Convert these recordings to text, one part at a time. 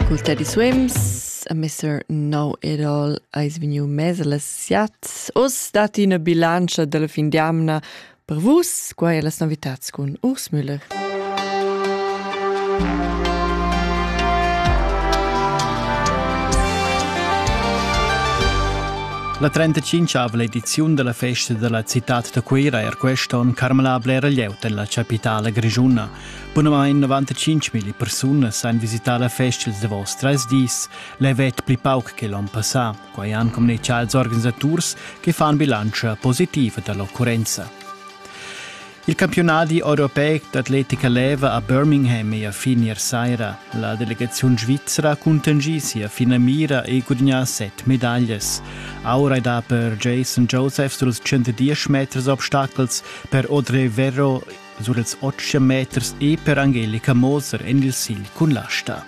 Cul Teddy Swims a Mr. Know It All ais vegniu mez las siat. Uss dat ina bilantscha dalla fin d'amna per vus, quai è las novitats cun Urs Müller. La 35 ediziun della festa della città da Cuira è er questo on carmelabla era lieut della capitale grigiuna. Bunamain 95.000 persunas han visità la festa da vos tres dis, levet pli pauc che l'on passà, quai han communichà als organisaturs che fan bilantscha positiva da l'occurrenza. Il campionadi europeic d'atletica leva a Birmingham è a fin ier saira. La delegaziun svizra ha contingì sia finamira e gudagnà set medaglias. Aura è da per Jason Josephs dals 110 meters obstacels, per Audrey Verro sur ils otg meters e per Angelica Moser en il sigl cun l'asta.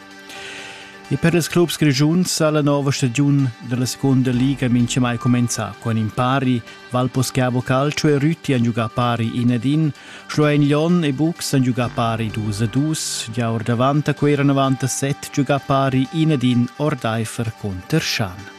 E per ils clubs grischuns ha la nova stagiun della seconda liga mincha mai comenzà con in pari, Valposcavo Calcio e Rütti han giugà pari in ed in, Schloen Lyon e Bux han giugà pari dus ed dus, già or davant a quei 97 giugà pari in ed in Ordeifer conter Schan.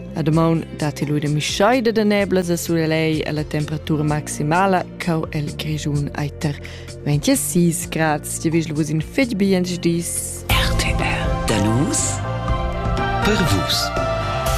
A damaun datti lui de mischaida de neblas a surelei e la temperatura maximala cau el grigiun eiter 26 grads. Ti vigel vus in fetg bien dis. RTR. Da nus per vus.